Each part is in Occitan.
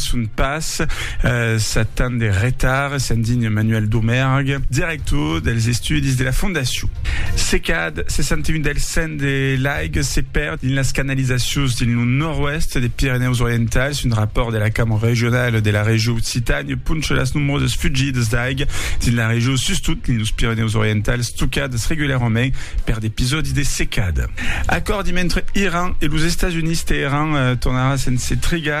son pas sat tant de retard, se'n digna Manuel Domergue, director dels estudis de la fondacion. Se cad 61 del cent de l'aiga se perd dins las canalizacions dins lo nòrd-oèst de Pirenèus Orientals, un rapòrt de la Cambra Regionala de la Regió Occitània poncha las nombrosas fugidas d'aiga dins la regió, sustot dins los Pirenèus Orientals, tocadas regularament per d'episòdis de secada. Acòrdi mentre Iran e los Estats Units, Teheran tornarà sense trigar.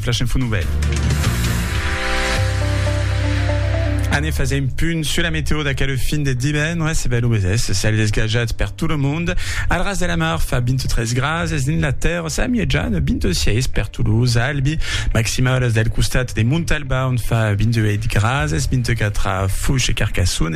Flash Info Nouvelles. Anem fazer un punt sur la météo d'aquel fin de divendres. E ben, lo mesès, cèl desgajat per tot lo mond. Al ras de la mar fa 23 graus, es dins la terra sa mièja de 26 per Toulouse, Albi. Maximalas del costat de Montalba, on fa 28 graus, es 24 a Foix e Carcassonne.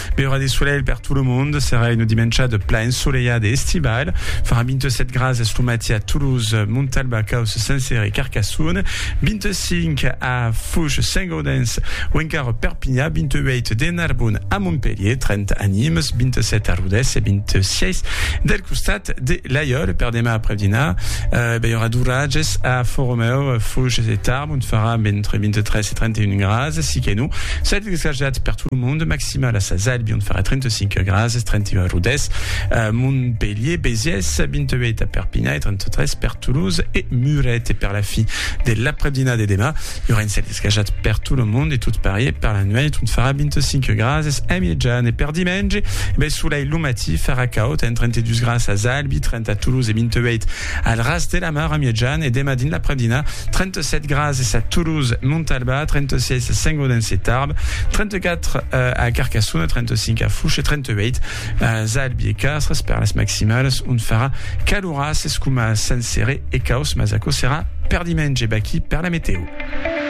Bèu ora de solelh per tot lo monde, serà una dimenchada plan ensolelhada e estivala, farà 27 grads es lo matí a Toulouse, Montalba, Causse, Saint-Cyr e Carcassonne, 25 a Fouge, Saint-Gaudens o encara Perpinha, 28 de Narbonne a Montpelhier, 30 a Nimes, 27 a Rodés e 26 del costat de Laiòle. Per demà aprèp dinar, bèu ora d'oratges a Fòromèu, Fouges e Tarbes, ont farà entre 23 31 grases, si que non, 7 descarjats per tot lo monde, maximal a Sas Albion farà 35 grases, 31 a Rodés, a Montpellier, Béziers, 28 a Perpinha e 33 per Toulouse e Muret. E per la fi de l'après-dina de demà, i aurà un cèl descarjat per tot lo monde e tot parier per la nuèit ont farà 25 grases a mièjan. E per dimenge, ben solei lo matí, farà caud, amb 32 grases a Sas Albi, 30 a Toulouse e 28 Al ras de la mar a Miègjane e demà dins l'aprèp-dinà, 37 grads es a Toulouse, Montalbà, 36 a Saint-Gaudens e Tarbes, 34 a Carcassona, 35 a Fouche e 38 a Zalbi e Castres per las maximalas ont farà caloràs es coma a Saint-Céré e caus mas aquò serà per dimenge. Vaquí per la metèo.